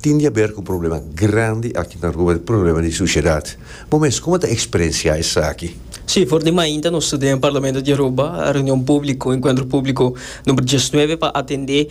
Tin di haber cu problema grandi aki na Aruba, e problema di suciedad. Bo mes, como ta experencia esaki? Sí, for di mainta nos ta den Parlamento di Aruba, reunion publico, encuentro publico number diesnuebe pa atende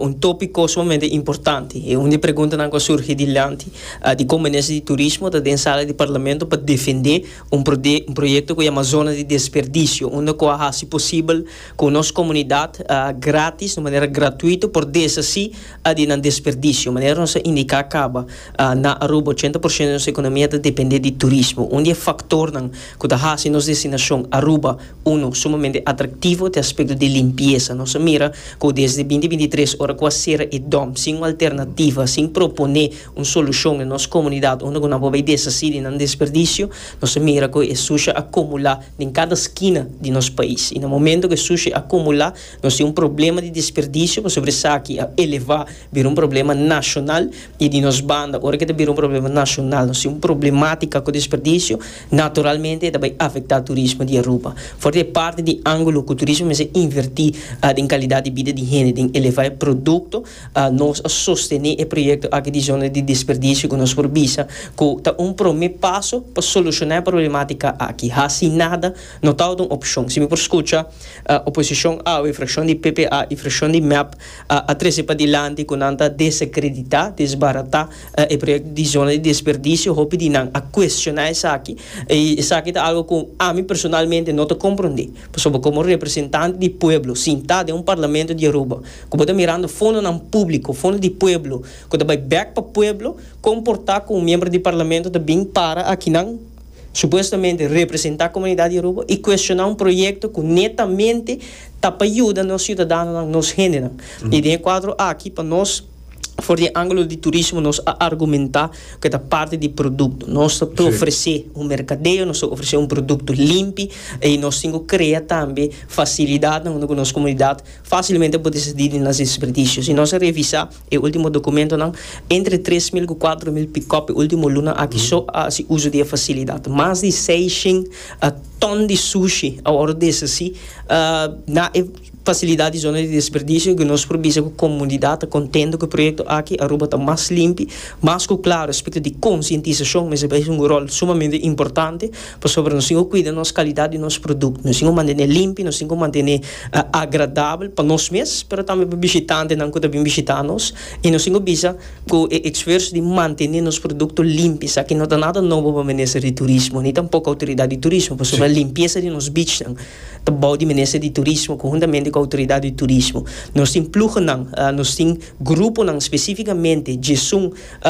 un topico sumamente importante. E un di preguntanan cu a surgi dilanti di con Minister di Turismo ta den sala di Parlamento pa defende un proyecto cu yama Zona di Desperdicio, unda cu a haci posibel cu nos comunidad gratis, di manera gratuito, por deshaci a di nan desperdicio. Manera nos a indica caba, na Aruba ochenta por ciento di nos economia ta depende di turismo. Un di e factornan cu ta haci nos destinacion Aruba, uno, sumamente atractivo te aspecto di limpieza. Nos a mira cu desde binti binti tres ora cu a cera e dom sin un alternativa, sin propone un solucion na nos comunidad unda cu nan por bay deshaci di nan desperdicio, nos a mira cu e sushi a cumula den cada skina di nos pais. Y na momento cu e sushi a cumula. Nos tin un problema di desperdisio pasobra esaki a elevá bira un problema nashonal i di nos banda ora ke ta bira un problema nashonal nos tin un problematika ku desperdisio naturalmente e ta bai afektá turismo di Aruba for e parti di angulo ku turismo mester invertí den kalidat di bida di hende den elevá e produkto nos a sostené e proyekto aki di zona di desperdisio ku nos por bisa ku ta un promé paso pa solushoná e problematika aki hasi nada no ta wòrdu un opshon si mi por skucha Oposishon awe, frakshon di PPA i frakshon di mep a trese pa dilanti ku nan ta desakreditá, desbaratá, e proyekto di zona di desperdisio. Hopi di nan a kuestioná esaki i esaki ta algu ku ami personalmente no ta komprondé. Pasobra komo representante di pueblo sintá den un parlamento di Aruba ku bo ta mirando fondonan públiko, fondo di pueblo ku ta bai bèk pa pueblo, kon por ta ku un miembro di parlamento ta bin para akinan? supuestamente representa comunidad Yoruba y cuestiona un proyecto cu netamente ta pa yuda nos ciudadanonan, nos gendenan. Y den e cuadro aki pa nos, for di e angulo di turismo, nos a argumenta cu e ta parti di producto. Nos ta ofrece un mercadeo, nos ta ofrece un producto limpi y nos tin cu crea tambe facilidadnan unda cu nos comunidad facilmente por descedi di nos desperdicios. Y nos a revisa. E ultimo dokumentonan, entre tres mil ku kuater mil pikòp e ultimo luna aki so a hasi uso di e fasilidat. Mas di seishen tòn di sushi a wòrdu deshasí na e fasilidat di zona di desperdisio ku nos por bisa ku komunidat ta kontento ku e proyekto aki. Aruba ta mas limpi, mas ku klaru respecto di konsientisashon mester bai hunga ròl sumamente importante. Pasobra nos tin ku kuida nos kalidat di nos produkto. Nos tin ku mantené limpi, nos tin ku mantené agradabel pa nos mes, pero tambe pa bishitantenan ku ta bin bishitá nos. I nos tin ku bisa ku e esfuerso di mantené nos produkto limpi sa ki no ta nada nobo pa minister di turismo ni tampoko outoridat di turismo pasobra limpiesa di nos bichnan ta bou di minister di turismo konhuntamente ku outoridat di turismo. Nos tin pluhonan, nos tin gruponan spesifikamente djesun.